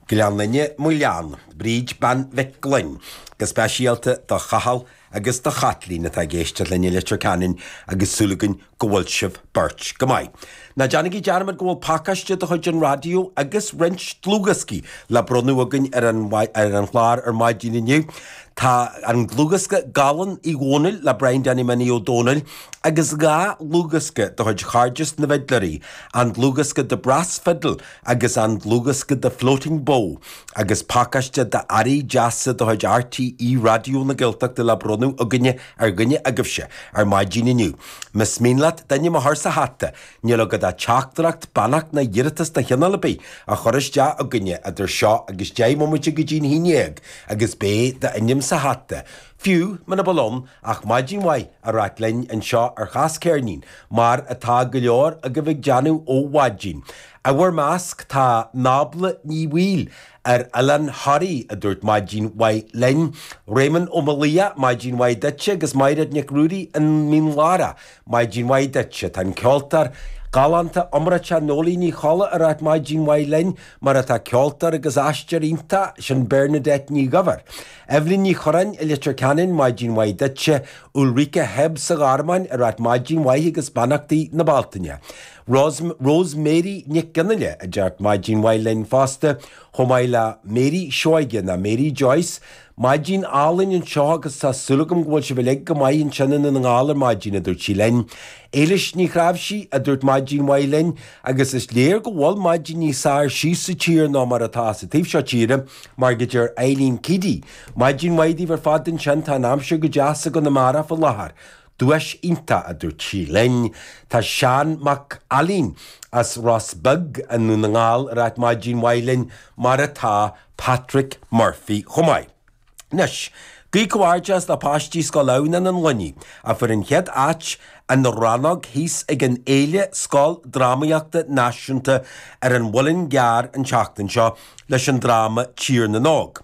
Gleann Fhinne, Maigh Leann, Bríd Bean Mhic Gloinn, go speisialta do Chathal agus do Chaitlín atá ag éisteacht linn i Leitir Ceanainn agus súil againn go bhfuil sibh beirt go maith. Ná déanaigí dearmad go bhfuil pacáiste de chuid an raidió agus roinnt dlúthdhioscaí le bronnadh againn ar an chlár ar maidin inniu. Tá an dlúthdhiosca Gallán Uí Dhónaill le Brian Danny Minnie Ó Domhnaill agus dhá dhlúthdhiosca de chuid Chairdeas na bhFidléirí an dlúthdhiosca The Brass Fiddle agus an dlúthdhiosca The Floating Bow, agus pacáiste d'earraí deasa de chuid RTÉ Raidió na Gaeltachta le bronnadh againne ar dhuine agaibhse ar maidin inniu. Más mian leat d'ainm a chur sa hata, níl agat ach teachtaireacht, beannacht nó iarratas de chineál ar bith a chur isteach againne idir seo agus deich mbomaite go dtí an haon déag agus beidh d'ainm sa hata. Fiú muna bhfuil ann ach maidin mhaith a ráit linn anseo ar Chas Ceirnín, mar atá go leor agaibh ag déanamh ó mhaidin, i bhur measc tá Nábla Ní Bhaoill, ar Oileán Thoraí, a dúirt maidin mhaith linn. Réamonn Ó Maolaodha, maidin mhaith duitse agus Maighread Nic Ruairí, i Mín Lárach, maidin mhaith duit. Tá an ceoltóir galánta iomráiteach Noeleen Ní Cholla ag ráit maidin mhaith linn, mar atá ceoltóir agus aisteoir iontach sin Bernadette Ní Dhuibhir. Eibhlín Ní Churráin i Leitir Ceanainn, Maidin mhaith duitse. Ulrike Hebb sa Ghearmáin ag ráit Maidin mhaith agus beannachtaí na Bealtaine. Rose Mary Nic Fhionnaile a deir Maidin mhaith linn fosta, chomh maith le Mary Seoige ná Mary Joyce. Maidin álainn anseo agus tá súil agam go bhfuil sibh uilig go maith ansin i nDún na nGall ar maidin, a dúirt sí linn. Éilis Ní Chnáimhsí a dúirt Maidin mhaith linn. agus is léir go bhfuil maidin níos fhearr síos sa tír ná mar atá sa taobh seo tíre mar go deir Eileen Keady, Maidin mhaith daoibh ar fad ansin, tá an aimsir go deas i gConamara faoi láthair. Duais iontach, a dúirt sí linn. Tá Seán Mac Ailín as Ros Beag i nDún na nGall ag ráit maidin mhaith linn, mar atá Patrick Murphy chomh maith. Anois, guí comhghairdeas le páistí Scoil Adhamhnáin an Luinnigh a fuair an chéad áit an rannóg thíos ag an Fhéile Scoildrámaíochta Náisiúnta ar an Mhuileann gCearr an tseachtain seo leis an dráma Tír na nÓg.